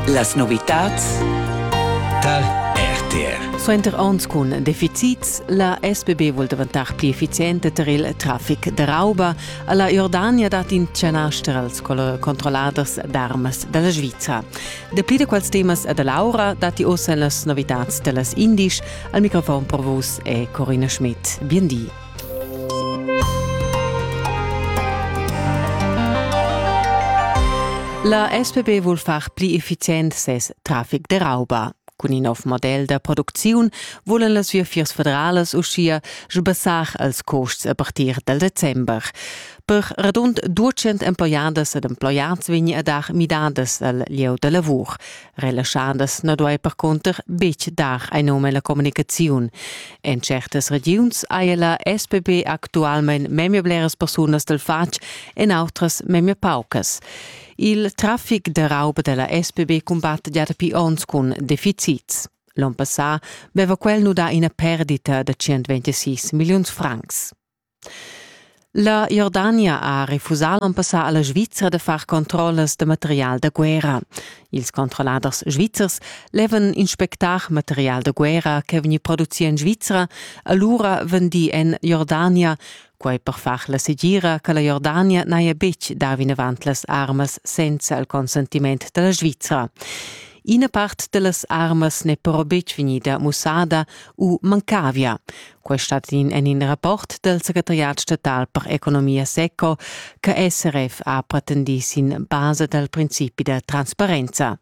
Las novitads dal RTR. Suenter onns cun deficits, la SBB vul daventar pli efficienta tar il traffic da rauba. Alla Jordania dat in chanaster als controlladers d'armas dalla Sviza. Dapli da quels temas da Laura datti ossa las novitads dallas Indisch. Al microfon per vus è Corina Schmidt. Bien di. La SPB vul far pli effizient ses traffic de rauba. Cun in nov model da producziun volen las viafiers federalas uschia sbassar als costs a partir del december. Per radund 200 emploiadas ed emploiads vegni a dar midadas al lieu da lavur. Relaschandas na duai percunter betg dar ein num alla communicaziun. En certas regiuns haja la SPB actualmein memia bleras persunas del fatg, en autras memia paucas. Il traffic de rauba della SPB combatte già dapi onns cun deficits. L'on passà veva quel nudà ina perdita da 126 milliuns francs. La Jordania ha refusà l'on passà a la Svizra da far controllas da material da guerra. Ils controlladers svizzers levan inspectar material da guerra ch'è vegni producì en Svizra, alura vendì en Jordania, quai per far la segira che la Jordania n'haja betg dà vinavant las armas senza il consentiment da la Svizra. Ina part da las armas n'è però betg vegnida mussada u mancavia. Quai stat in en in rapport dal secretariat statal per economia seco che SRF ha pretendì sin basa dal principi da transparenza.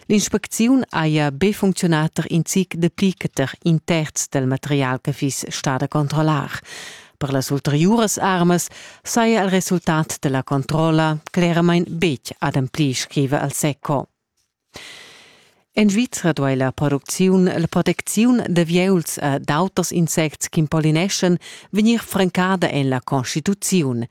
L'inspecziun haja be funcziunà tar in zic dapli che tar in terz dal material che fiss stà da controllar. Per las ulteriuras armas saja il resultat della controlla claramain betg ademplì, scrive al SECO. En Svizra duai la producziun, la protecziun da vieus e d'auters insects ch'impolineschan vegnir francada en la constituziun.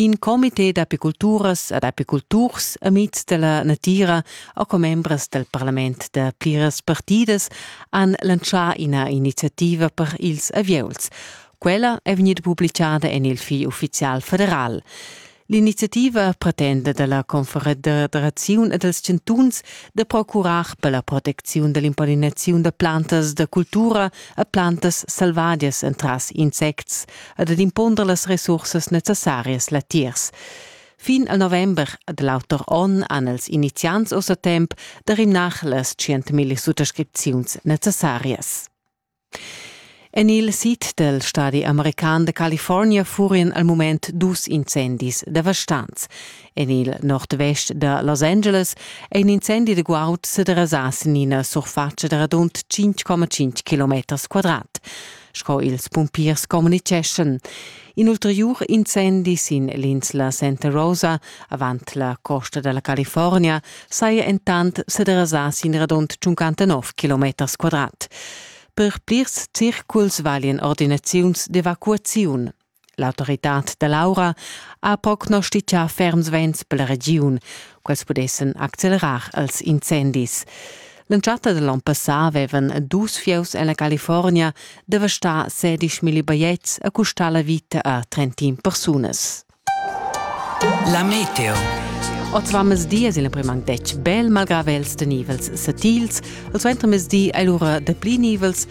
In comité d'apiculturas ed apiculturs amids da la natira e commembras dal parlament da pliras partidas han lantschà ina iniziativa per ils avieus. Quella è vegnida publicada en il Fil uffizial federal. L'iniziativa pretenda dalla Confederaziun e dals chantuns da procurar per la protecziun dall'impallinaziun da plantas da cultura e plantas selvadias entras insects ed ad imponder las resursas necessarias latiers. Fin al november da l'auter onn han els iniziants ossa temp da rimnar las 100.000 suttascripziuns necessarias. En il sid dal stadi american da California furian al mument dus incendis devastants. En il nordvest da Los Angeles è in incendi da guaud sa derasà sin ina surfatscha da radund 5,5 km quadrat, sco ils pumpiers communitgeschan. In ulteriur incendi sin l'insla Santa Rosa, avant la costa dalla California, saja entant sederasà sin radund 59 km quadrat. Per plirs circuls valien ordinaziuns d'evacuaziun. L'autoritad da Laura ha prognostitgà ferms vents per la regiun, quels pudessen accelerar als incendis. L'entschatta da l'on passà avevan dus fieus en la California devastà sedisch milli bajetgs e custà la vita a trentin persunas. La meteo. Oz va mezdi es il primang detg bel malgrà vels de nivels satils, il suentermezdi è lura de pli nivels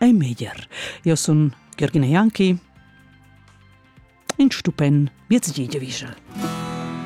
ei meglier. Io sun Jürgen Janki. In stupen, miez gidivischel.